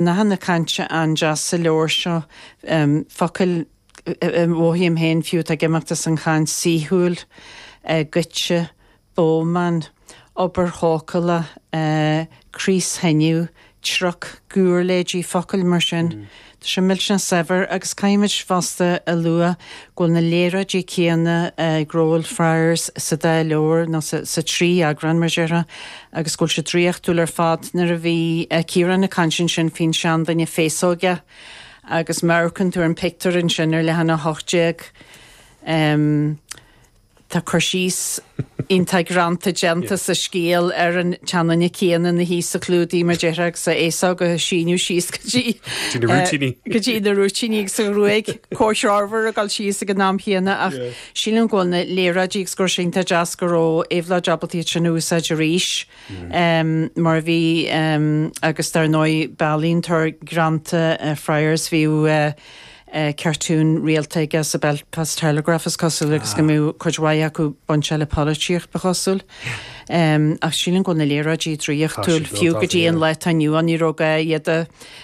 Nathanna cainte an-deas sa leabhar seo. Focail a mhothaím féin fiú atá ag imeacht as an chaint saoithiúil, goitse, bómán, obair chócála, craos thineadh, trioc, giúirléidí, focail mar sin. Tá sé millteanach saibhir agus caithfimid fosta a lua go bhfuil na léaráidí céanna ag Rowel Friers sa dá leabhar, nó sa trí eagrán, mar a déarfá, agus go bhfuil sé draíochtúil ar fad. Nuair a bhí Ciarán ag caint ansin faoin seanduine féasógach agus má amharcann tú ar an pictiúr ansin ar leathanach 18 em tá cur síos iontach greanta déanta sa scéal ar an tseanduine céanna ina shuí sa chlúdaigh mar déarfá agus a fhéasóg ag síneadh síos go dtí go dtí na rúitíní agus an ghruaig comhthreomhar a dhul síos ag an am chéanna ach Sílim go bhfuil na léaráidí agus go raibh sé iontach deas go raibh Éabhlóid ábalta iad sin a úsáid arís mar a bhí agus dar ndóigh b'ealaíontóir greanta Friers bhí cartún rialta aige sa Belfast Telegraph is cosúil agus go mbeadh cuid mhaith acu bainte le polaitíocht ba chosúil ach sílim go bhfuil na léaráidí draíochtúil fiú go dtí an lá atá inniu ann ní raibh gá iad a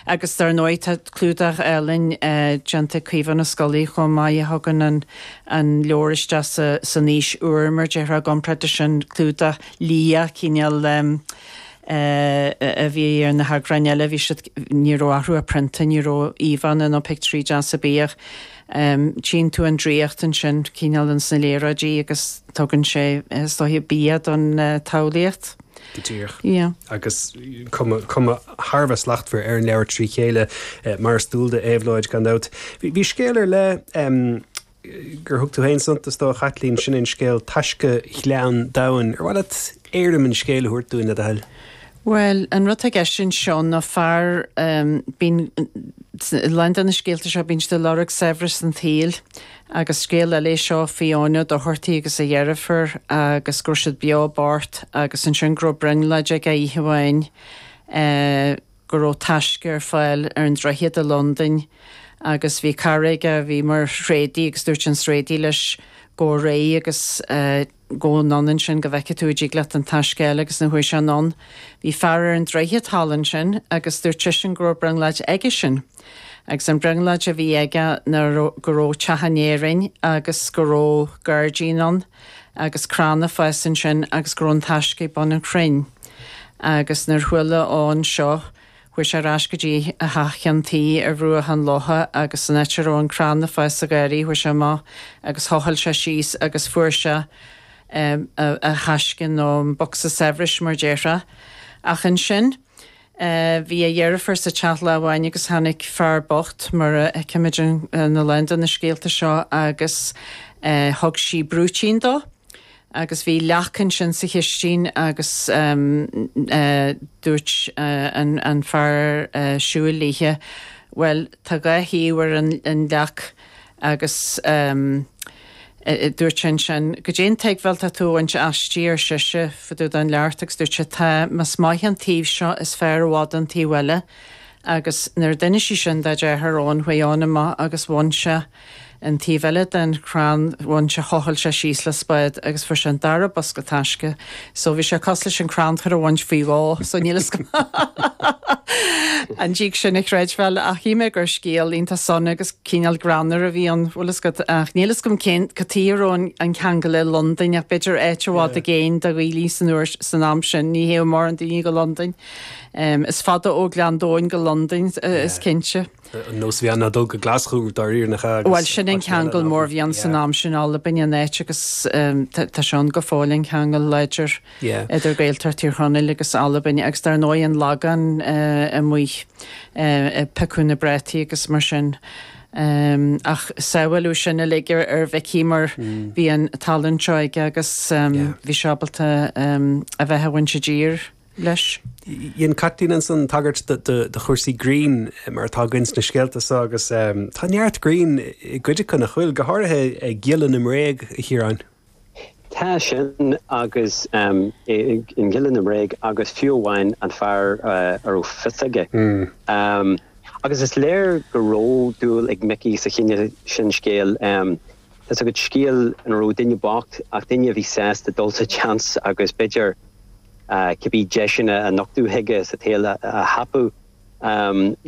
Agus dar ndóigh tá clúdach álainn déanta ag Caomhán Ó Scolaí chomh maith a thugann an an leabhar isteach san aois úr mar a déarfá i gcomparáid leis an gclúdach liath cineál a bhí ar na heagráin eile. Bhí siad, ní raibh orthu ach prionta, ní raibh íomhánna nó pictiúirí deasa ar bith, ach tchíonn tú an draíocht ansin cineál ins na léaráidí agus tugann sé is dóiche bia don tsamhlaíocht. Go díreach. Agus cuma thar a bheith slachtmhar ar an leabhar trí chéile, mar is dual do Éabhlóid, gan dabht. Bhí scéal ar leith, gur thug tú féin suntas dó, a Chaitlín, sin é an scéal 'Taisce Ghleann Domhain'. Ar mhaith leat éirim an scéil a thabhairt dúinn, le do thoil? Bhuel, an rud atá i gceist anseo ná fear, bíonn, a lán de na scéalta seo, bíonn siad ag lorg saibhreas an tsaoil, Agus scéal eile é seo faoi Eoghan Ó Dochartaigh agus a dheirfiúr agus go raibh siad beo bocht agus ansin go raibh brionglóid aige oíche amháin go raibh taisce ar fáil ar an droichead i Londain agus bhí cara aige a bhí mar thréadaí agus dúirt an tréadaí leis gabh ar aghaidh agus Gabh anonn ansin go bhfeicfidh tú an dtig leat an taisce a fháil agus nuair a chuaigh sé anonn. Bhí fear ar an droichead thall ansin agus dúirt seisean go raibh brionglóid aigesean. Agus an brionglóid a bhí aige ná go raibh teach in Éirinn agus go raibh gáirdín ann agus crann ag fás ansin agus go raibh an taisce ag bun an chrainn. Agus nuair chuala Eoghan seo Chuaidh sé ar ais go dtí a theach i gcionn tí ar bhruach an locha agus san áit a raibh an crann le fáil sa gharraí chuaidh sé amach agus thochail sé síos agus fuair sé a thaisce nó an bosca saibhris mar déarfá. Ach ansin bhí a dheirfiúr sa teach lá amháin agus tháinic fear bocht mar a tchímid in a lán de na scéalta seo agus thug sí brúitín dó. Agus bhí leac ansin sa chistín agus dúirt an fear siúil léithe, bhuel tá dhá thaobh ar an leac agus dúirt sí ansin, goidé an tuigbheáil tá tú a bhaint aisti ar sise fá dtaobh dá labhairt agus dúirt sé, tá, más maith an taobh seo is fearr i bhfad an taobh eile. Agus nuair a d'inis sí sin dá deartháir chuaigh Eoin amach agus bhain sé. an taobh eile den chrann bhain sé thochail sé síos le spád agus fuair sé an dara bosca taisce so bhí sé cosúil leis an chrannchur a bhaint faoi dhó so níl fhios agam an dtig sin a chreidbheáil ach shíl mé gur scéal iontach suimiúil agus cineál greannmhar a bhí ann bhfuil fhios agat ach níl fhios agam cad tuige a raibh an ceangal le Londain ach b'fhéidir áit i bhfad i gcéin do Ghaeil san uair san am sin ní théadh mórán daoine go Londain is fada ó Ghleann Domhain go Londain is cinnte. An nós a bhí ann ná dul go Glaschú dáiríre nach ea agus. Bhuel sin an ceangal mór a bhí ann san am sin, Albain an áit agus tá sé ann go fóill an ceangal láidir idir Gaeltacht Thír Chonaill agus Albain agus dar ndóigh an Lagán amuigh ag piocadh na bpréataí agus mar sin. Ach sea bhuel luigh sin uilig ar Mhicí mar bhí an tallann seo aige agus bhí sé ábalta a bheith i dtír. leis. Dhein Caitlín ansan tagairt do chúrsaí grinn mar atá againn sna scéalta so agus tá neart grinn i gcuid acu, nach bhfuil? Go háirithe Giolla na mBréag, a Chiaráin. Tá sin agus in Giolla na mBréag agus fiú amháin An Fear a Raibh Fios Aige. Agus is léir go raibh dúil ag Micí sa chineál sin scéil. Tá's agat scéal ina raibh duine bocht ach duine a bhí sásta dul sa tseans agus b'fhéidir cibé deiseanna a nochtadh chuige sa tsaol a thapú.